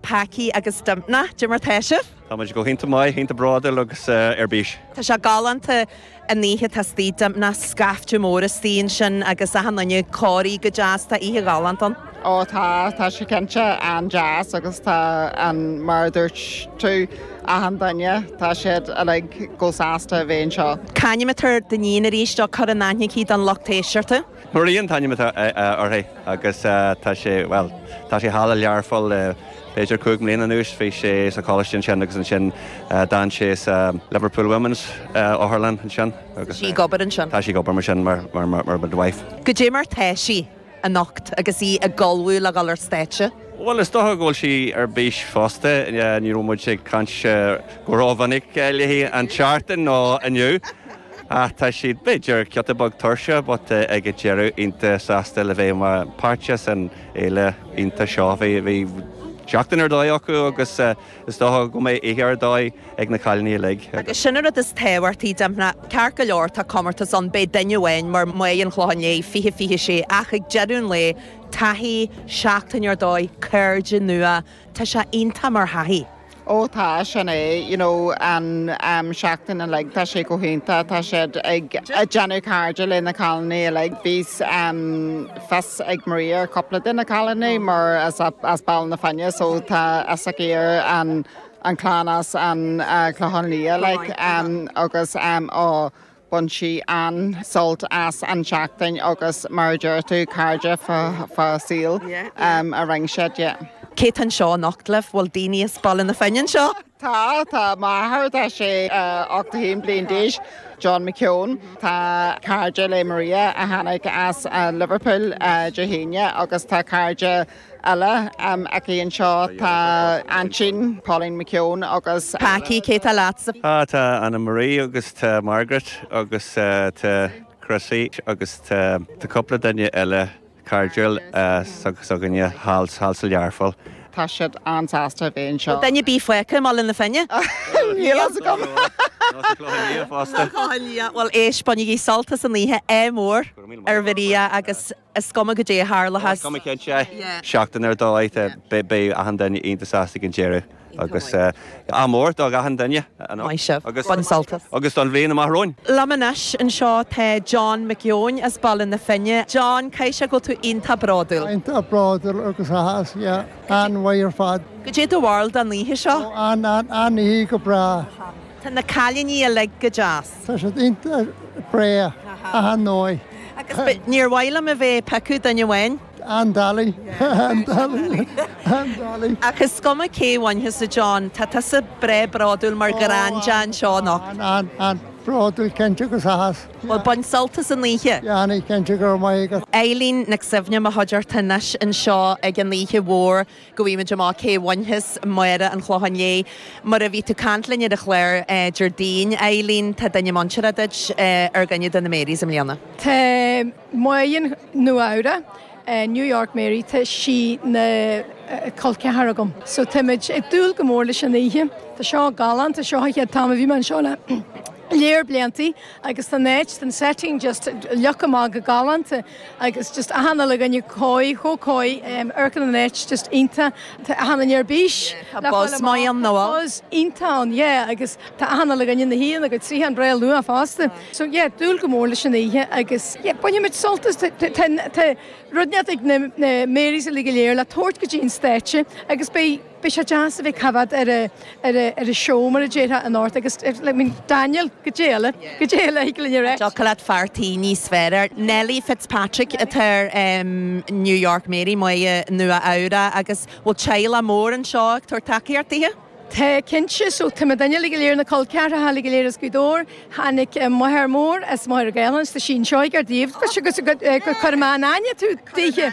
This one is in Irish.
Packie agus Dympna, Diarmuid Hession. Tá muid go hiontach maith, iontach bródúil agus ar bís. Tá sé galánta an oíche atá istigh, Dympna, scaifte mór istigh ansin agus achan duine ag corraí go deas, tá oíche ghalánta ann. Ó tá, tá sé cinnte an-deas agus tá an, mar a dúirt tú, achan duine, tá siad uilig go sásta a bheith anseo. Cén t-ainm atá ar do níon arís, á cur in aithne don lucht éisteachta. Maria an t-ainm atá uirthi agus tá sé, bhuel, tá sí thall i Learpholl le b'fhéidir cúig bliana anuas. Bhí sí sa choláiste ansin agus ansin d'fhan sí sa Liverpool Women's otharlann ansin agus. Tá sí ag obair ansin? Tá sí ag obair mar sin mar midwife. Goidé mar tá sí anocht agus í ag ullmhú le dhul ar stáitse? Bhuel, is dócha go bhfuil sí ar bís fosta, ní raibh muid ag caint go rómhinic léi an tseachtain nó inniu. Ach tá siad, b'fhéidir, giota beag tuirseach but ag an deireadh iontach sásta le bheith mar pháirt san fhéile iontach seo. Bhí seachtain ar dóigh acu agus is dócha go mbeidh oíche ar dóigh ag na cailíní uilig. Agus sin an rud is tábhachtaí, Dympna. Ceart go leor, tá comórtas ann, beidh duine amháin mar Mary an Chlocháin Léith 2026 ach ag deireadh an lae, taithí, seachtain ar dóigh, cairde nua, tá sé iontach mar thaithí. Ó tá, sin é, you know, an seachtain uilig, tá sé go hiontach, tá siad ag déanamh cairde le na cailíní uilig, bhí fios ag Maria ar chúpla de na cailíní mar is as Baile na Finne so tá fhios aici ar an cheann as an Chlochán Liath, like, agus, á, Bhain sí an-sult as an tseachtain agus mar a deir tú, cairde fá saol a rinne sí de. Cé tá anseo anocht libh? Bhfuil daoine as Baile na Finne anseo? Tá, tá m'athair, tá sé 81 bliain d'aois, John McKeown, tá cairde le Maria a tháinig as Liverpool Dé hAoine agus tá cairde eile aici anseo tá aintín, Pauline McKeown agus. Packie, cé tá leatsa? Á, tá Annemarie agus tá Margaret agus tá Chrissie agus tá cúpla duine eile cairdiúil s'againne thall sa Learpholl. Tá siad an-sásta a bheith anseo. Duine ar bith fágtha i mBaile na Finne? Níl fhios agam! Nó sa Chlochán Liath fosta. Chlochán Liath, bhuel éist, bainigí sult as an oíche, ádh mór ar Mharia agus. Is cuma goidé a tharlós. Seachtain ar dóigh. Beidh achan duine iontach sásta ag an deireadh agus ádh mór do achan duine Maith sibh. Bain sult as. agus don bhliain amach romhainn! Liom anois anseo tá John Mac Eoin as Baile na Finne. John, caithfidh sé go bhfuil tú iontach bródúil. Iontach bródúil agus áthas, yeah. An-mhaith ar fad. Goidé do bharúil don oíche seo? Ó, an-oíche, go breá. Tá na cailíní uilig go deas. Tá siad iontach breá achan dóigh. Agus níor mhaith liom a bheith ag piocadh duine amháin. An Dali. An Dali. An Dali. Ach is cuma cé a bhainfeas a John, tá tusa breá bródúil mar granda anseo anocht. Ó, an, an, an, bródúil cinnte agus a's. Bhuel, bain sult as an oíche. Déanfaidh, cinnte, go raibh maith agat. Eilín Nic Suibhne i mo chuideachta anois anseo ag an oíche mhór. Go bhfaighimid amach cé bhainfeas Máire an Chlocháin Léith. Mar a bhí tú ag caint linn ar an chlár Déardaoin, a Eileen, tá duine muinteartha duit ar dhuine de na Marys i mbliana. Tá Máire Nua Eabhrac, New York Mary, tá sí ina col ceathar agam. So táimid ag dúil go mór leis an oíche. Tá seo galánta, seo an chéad t-am a bhí mé anseo le lear bliantaí agus tá an áit, an setting just leagtha amach go galánta. Agus just achan uile dhuine coy, chomh coy, amharcann an áit, just iontach. Tá achan duine ar bís le fáil amach, tá buzz iontach ann, yeah, agus tá achan uile dhuine ina shuí ina gcuid suíochán breá luath fosta. So yeah, dúil go mór leis an oíche agus yeah, bainfimid sult as, tá rud inteacht ag na Marys uilig go léir le tabhairt go dtí an stáitse agus beidh. Beidh sé deas a bheith ag coimhéad ar an show mar a déarfá in árd agus ar I mean Daniel goidé eile, goidé eile a thig linn a rá. Ní thiocfadh leat fear tí níos fearr a iarraidh. Nellie Fitzpatrick athair New York Mary Máire Nua Eabhrac agus bhfuil teaghlach mór anseo ag tabhairt tacaíocht dithe? Tá cinnte, so tá mo dhaoine uilig go léir, na col ceathracha uilig go léir as Gaoth Dobhair, tháinig mo mháthair mhór as Machaire Gathlán, tá sí anseo ag ár dtaobh, agus cuir in aithne tú, díthe.